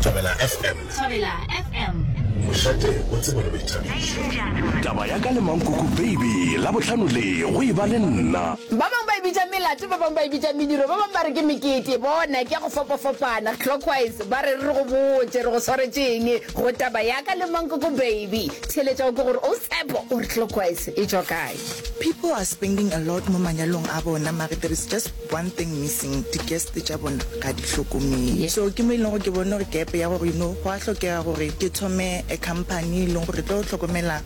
Thabela FM. Thabela FM. Mošate o tsebo le boithabišo. Taba ya ka le Mankoko Baby, Labohlano le, go e ba le nna. Ba bangwe ba e bitša melato, ba bangwe ba e bitša mediro, ba bangwe ba re ke mekete. Bona, ke ya go fapafapana. Clockwise, ba re re re go botše, re go swaretše'ng go Taba ya ka le Mankoko Baby. Theeletša o ke gore o Tshepo o re clockwise e tšwa kae? People are spending a lot mo manyalong a bona mare there is just One thing missing, di guest tša bona ga di hlokomele. So ke mo e leng gore ke bone gore gap ya gore you know go a hlokega gore ke thome a company e leng gore re tlo hlokomela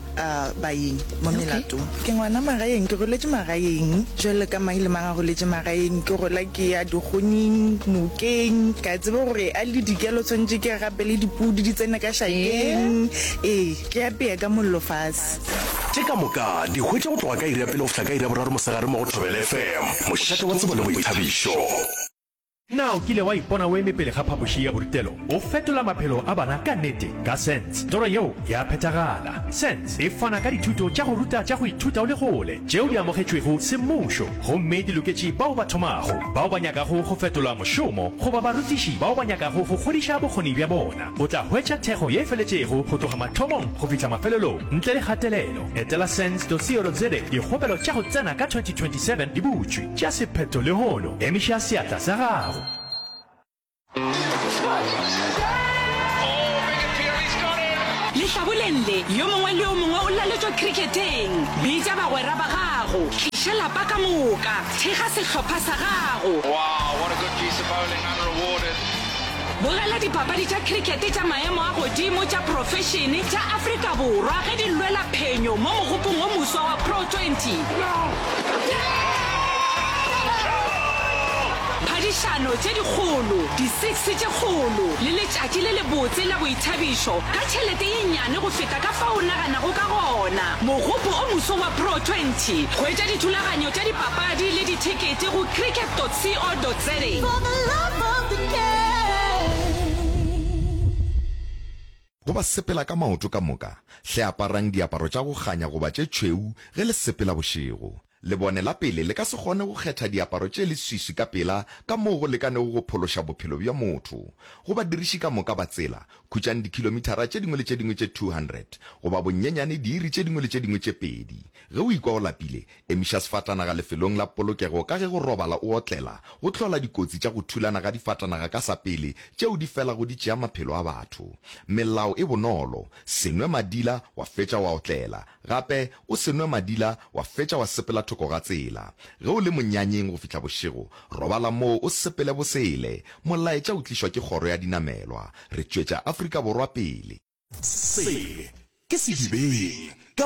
baeng mo melatong. Ke ngwana magaeng, ke goletše magaeng jwalo ka mang le mang a goletše magaeng. Ke gola ke ya dikgonyeng, nokeng, ke a tseba gore a le dikelo tshwanetše ke gapele dipudi di tsene ka šakeng. Ee, ke apeye ka mollo fase. Tše ka moka di hwetša go tloga ka iri ya pele go fihla ka iri ya boraro mosegare mo go Thobela FM, mošate wa tsebo le boithabišo. Na o kile wa ipona o eme pele ga phapoši ya borutelo? O fetola maphelo a bana ka nnete ka Sense. Toro yeo ya phethagala. Sense e fana ka dithuto tša go ruta tša go ithuta o le kgole, tšeo di amogetšwego semmušo gomme di loketše bao ba thomago, bao ba nyakago go fetola mošomo goba barutiši bao ba nyakago go kgodiša bokgoni bja bona. O tla hwetša thekgo ye feletšego go tloga mathomong go fihla mafelelong ntle le kgatelelo. Etela sens.co.za Dikgopelo tša go tsena ka 2027 di butšwe. Tšea sephetho lehono. Emiša seatla sa gago. Lehlaboleng le, yo mongwe le yo mongwe o laletšwa kriketeng. Bitša bagwera ba gago. Tliša lapa ka moka. Thekga sehlopha sa gago. Wow, what a good piece of bowling, unrewarded. Bogela dipapadi tša cricket tša maemo a godimo tša profešene tša Afrika Borwa ge di lwela phenyo mo mogopong o moswa wa Pro 20. Phadišano tše dikgolo, di-six tše kgolo le letšatši le lebotse la boithabišo ka tšhelete ye nnyane go feta ka fao o naganago ka gona. Mogopo o moswa wa Pro 20. Hwetša dithulaganyo tša dipapadi le dithekete go cricket.co.za. Go ba sepela ka maoto ka moka, hle aparang diaparo tša go kganya goba tše tšhweu ge le sepela bošego. Lebone la pele le ka se kgone go kgetha diaparo tše leswiswi ka pela ka moo go lekanego go phološa bophelo bja motho. Go badiriši ka moka ba tsela, khutšang dikhilomithara tše dingwe le tše dingwe tše 200, goba bonyenyane diiri tše dingwe le tše dingwe tše pedi. Ge o ikwa o lapile, Emiša sefatanaga lefelong la polokego ka ge go robala o otlela go hlola dikotsi tša go thulana ga difatanaga ka sa pele tšeo di felago di tšea maphelo a batho. Melao e bonolo, Se nwe madila wa fetša wa otlela. Gape, o se nwe madila wa fetša wa sepela thoko ga tsela. Ge o le monyanyeng go fihla bošego, robala moo o sepele bosele. Molaetša o tlišwa ke Kgoro ya Dinamelwa. Re tšwetša Afrika Borwa pele. Se ke sedibeng.